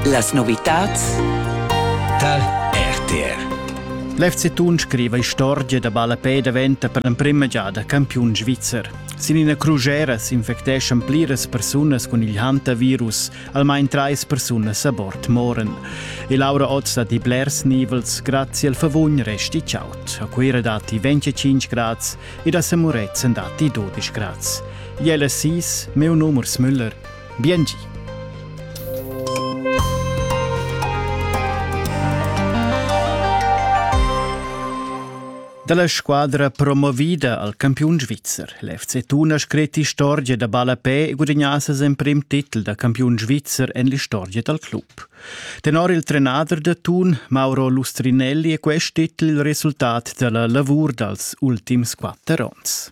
Las novitads tal RTR L'FC Thun scriva istorgia da ballapè daventa per l'emprima giada campiun svizzer. Sin ina crugera s'infecteschan pliras persunas cun il hantavirus, almain trais persunas a bord moran. E Laura Otz dat i blers nivels, grazie al favugn resti chaut. A Cuira datti 25 grads ed a Samuretzen datti 12 grads. Jelle Sis, meu numers Müller. Biengi. Dalla squadra promovida al campiun svizzer. L'FC Thun ha scret istorgia da ballapè e gudagnà ses emprim titel da campiun svizzer en l'istorgia dal club. Tenor il trenader da Thun, Mauro Lustrinelli, è quest titel il resultat dalla lavur dals ultims quatter onns.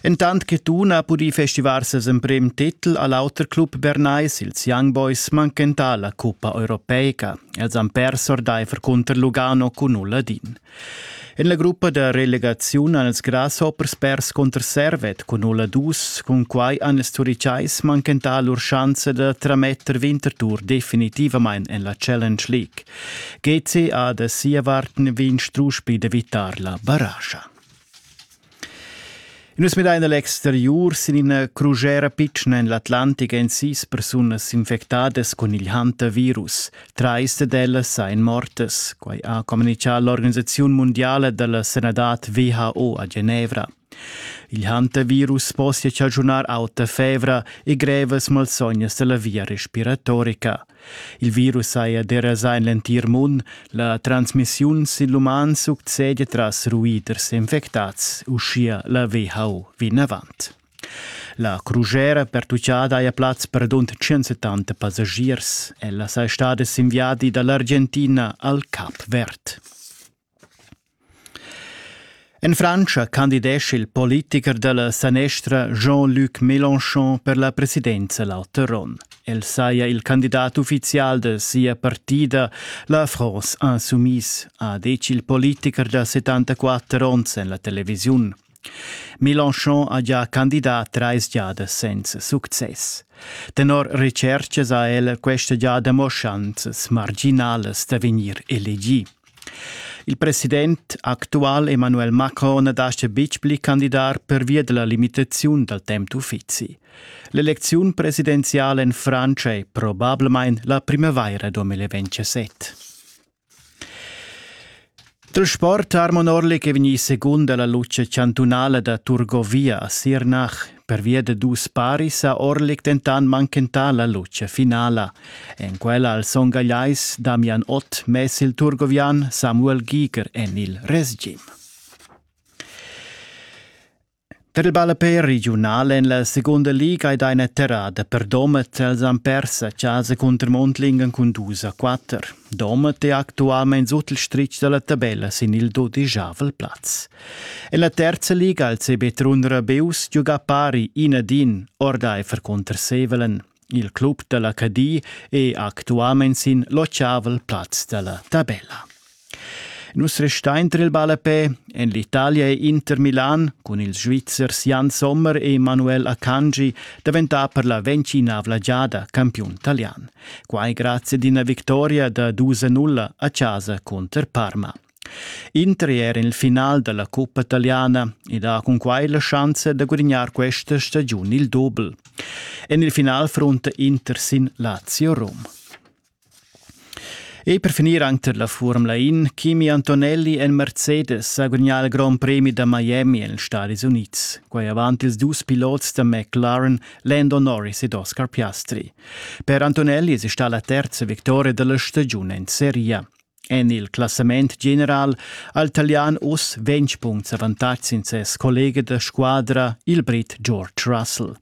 Entant che Tun ha pudì festivar ses emprem titel a l'auter club bernais, ils Young Boys manchentà la cuppa europeica. Els han pers ordaifer cunter Lugano cun Uladin. En la gruppa da relegaziun han els Grasshoppers pers cunter Servet cun Uladus, cun quai han ils Turicais manchentà lur schanza da trametter Winterthur definitivamain en la Challenge League. GC ha da sia vart vegn strusch pli da vittar la barascha. Nus midain a l'exteriur sin ina crugera pitschna en l'Atlantic èn sis persunas infectadas cun il Hunter-Virus. Trais dad ellas èn mortas. Quai ha communitgà l'organisaziun mundiala da la sanadad WHO a Genevra. Il Hunter-Virus possia chaschunar auta fevra e grevas malsognas da la via respiratorica. Il virus saja derasà en l'entir mund, la transmissiun sin l'uman succedia tras ruiders infectads, uschia la WHO vinavant. La crugera pertuccada haja plaz per dont 170 passagiers. Ella saja stada sin viadi da l'Argentina al Cap Verd. En Frantscha candidescha il politicher dalla sanestra Jean-Luc Mélenchon per la presidenza l'auter onn. El saja il candidat uffizial da sia partida, la France Insoumise, ha detg il politicher da 74 onns en la televisiun. Mélenchon ha gia candidà trais giadas senza success. Tenor retschertgas ha el questa giada mo schanzas marginalas da vegnir elegì. Il president actual Emmanuel Macron na dascha betg pli candidar pervia della limitaziun dal temp d'uffizi. L'elecziun presidenziala en Frantscha è probablamain la primavaira 2027. Il sport armonorlic è vegnì secund da la lucha chantunala da Turgovia a Sirnach. Pervia da dus paris ha Orlik dentant manchentà la lucha finala. En quella al Son Gagliais Damian Ott mess il turgovian Samuel Giger en il resgim. Per il ballapè regiunal en la segunda liga ei deina terrada per Domat els han pers a casa cunter Mondlingen cun dus a quatter. Domat è actualmein sut il stritg dalla tabella sin il dodigiavel plaz. En la terza liga il CB Trun Rabeus giuga pari in ad in ordaifer contr Sevelen. Il club da la Cadi è actualmain sin l'ottavel plaz da la tabella. Nus restain tra il ballapè en l'Italia è Inter Milan cun ils Svizzers Jan Sommer e Manuel Akanji daventà per la ventinavla giada campiun talian. Quai grazie ad una vittoria da 2-0 a casa contro Parma. Intri era il final dalla cuppa italiana ed ha cunquai la schanza da gudignar questa stagiun il dobel. En il final fronta Inter sin Lazio Rom. E per finir anche la Formula In, Kimi Antonelli en Mercedes ha gudignato il Grand Premi da Miami negli Stati Uniti, quai avanti ils dus pilots da McLaren, Lando Norris ed Oscar Piastri. Per Antonelli è stata la terza vittoria della stagione in Serie. En il classament general ha il talian uss ventg punts avantatg sin ses collega da squadra, il brit George Russell.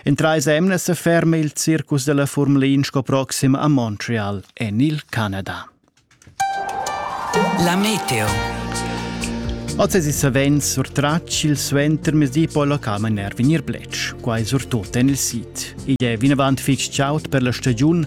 In trais emnas se ferma il circus della Formula 1 sco proxim a Montreal en il Canada. La meteo. Oz è savens surtratg il suentermesdi poi locam a nervinir blec. Quai surtut en il sit. Igl è vinavant fitg chaud per la stagiun,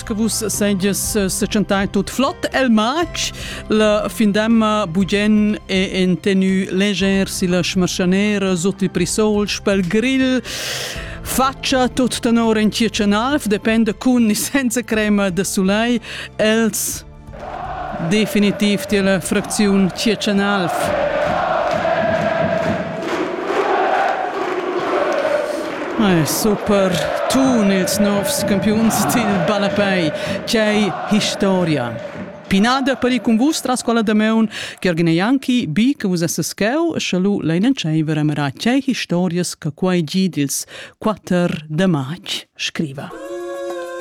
che vus seiges sechantai tut flot el matg la findemma bugen e en tenu leger si la schmarschanera sut il prisol spel grill faccia tut tenor en tia canalf depende cun ni senza crema de sulei els Definitiv tier fracziun Tschiertschen Alv. Ei super tun ils novs campiuns sil ballapei. Tgei historia! Pinada per ir cun vus tras quella Dameun, Gergen Janki, bi che vus esses cheu, sche lu lein entscheiver a merar tgei historias che quei gi dils quatter de matg scriva.